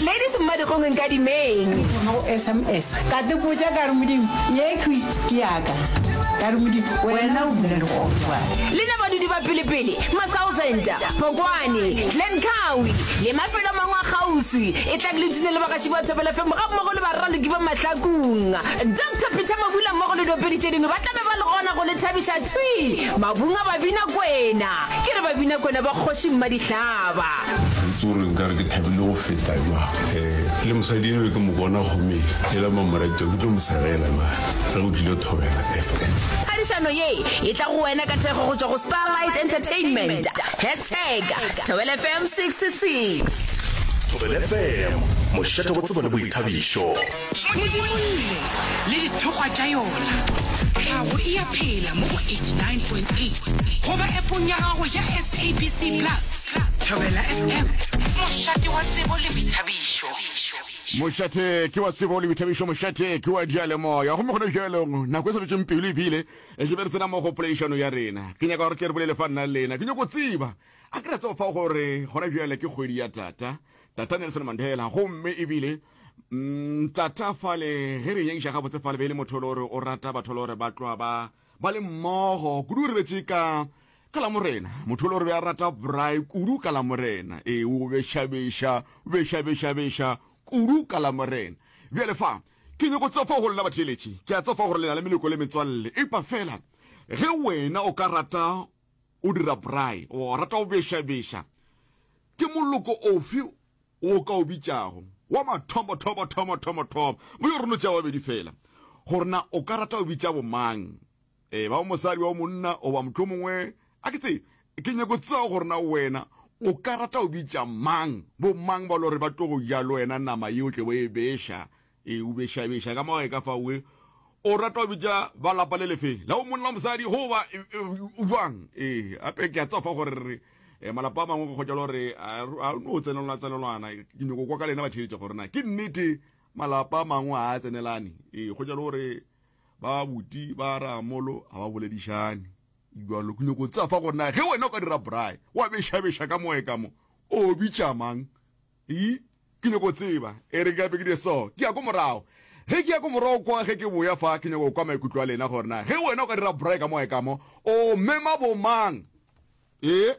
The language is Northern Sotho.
Ladies mmadikgong nkadimeng. Ke thoma go sms ka tepotša ka re modimo ye khwi ke yaka ka re modimo wena o bula legofa. Le na badudi ba pelepele, Matsauzenta, Phokwane, Glen Cowie le mafelo a mangwe a kgauswi e tlang le tune le bagaši ba Thobela FM ga mmogo le baraloki ba Mahlakung. Doctor Peter Mabula mmogo le diopedi tše dingwe ba tla be ba le gona go le thabiša thwi mabung a Babinakwena. Ke re Babinakwena ba Kgoši Mmadihlaba. itse gore nkare ke thabile go feta jwang um le mosadi eno ke mo bona gome e la mamoratwa ke tlo mo segela na ge go tlile thobela fm phadišano ye e tla go wena ka thekgo go tšwa go starlight entertainment hashtag thobel fm 66 thobel fm mošate go tsebo le boithabišo Modimo o ile, le dithokgwa tša yona. Tlhago e a phela mo go 89.8 goba epong ya gago ya SABC Plus, Thobela FM. Mošate wa tsebo le boithabišo. Mošate ke wa tsebo le boithabišo, mošate ke wa diyalemoya. Gomme gona bjalong, nako e sa dutšeng pelo ebile e tle be re tsena mo go poledišano ya rena. Ke nyaka gore tle re bolele fa nna le lena. Ke nyako tseba, a ke ra tseba fa gore gona bjale ke kgwedi ya tata, tata Nelson Mandela, gomme ebile Mm, tata fale ge re nyakiša gabotse fale be e le motho le gore o rata batho le gore ba tloa ba ba le mmogo kudu re betse ka ka la morena motho le gore be a rata bry kudu ka la morena ee o bešabeša o bešabešabeša kudu ka la morena bjale fa ke nyako tsefa go lena batheeletši ke a tsefa gore lena le meleko le metswalle epa fela ge wena o ka rata o dira bry o rata o bešabeša ke moloko ofe o ka o bitšago wa mathomothomothomothomothomo, mo yo reno tšea wa bedi fela, gore na o ka rata o bitša bomang, e ba o mosadi wa o monna o ba mohlomongwe, a ke tsebe, ke nyako tseba gore na wena o ka rata o bitša mang, bomang ba lo re ba tlo go ja le wena nama yeo tle bo e beša, Ee, o bešabeša ka mo gae ka fao. Ee, o rata go bitša ba lapa le lefe, la o monna o mosadi, goba bjang. Ee, gape ke a tseba fa gore re eh, malapa a mangwe go kgotša le gore a no tsenelwana tsenelwana. Ke nyoko kwa ka lena batheeletša gore na ke nnete malapa a mangwe a tsenelane. Ee, kgotša le gore ba buti ba ramolo ga ba boledišane jalo ke nyoko tseba fa gore na ge wena o ka dira braai wa bešabeša ka moe ka mo o bitša mang Ii, Ke nyoko tseba, e re gape ke di so, ke ya ko morago. Ge ke ya ko morago kwa ge ke boya fa, ke nyoko kwa maikutlo a lena gore na ge wena o ka dira braai ka moe ka mo, o mema bo mang? Ee.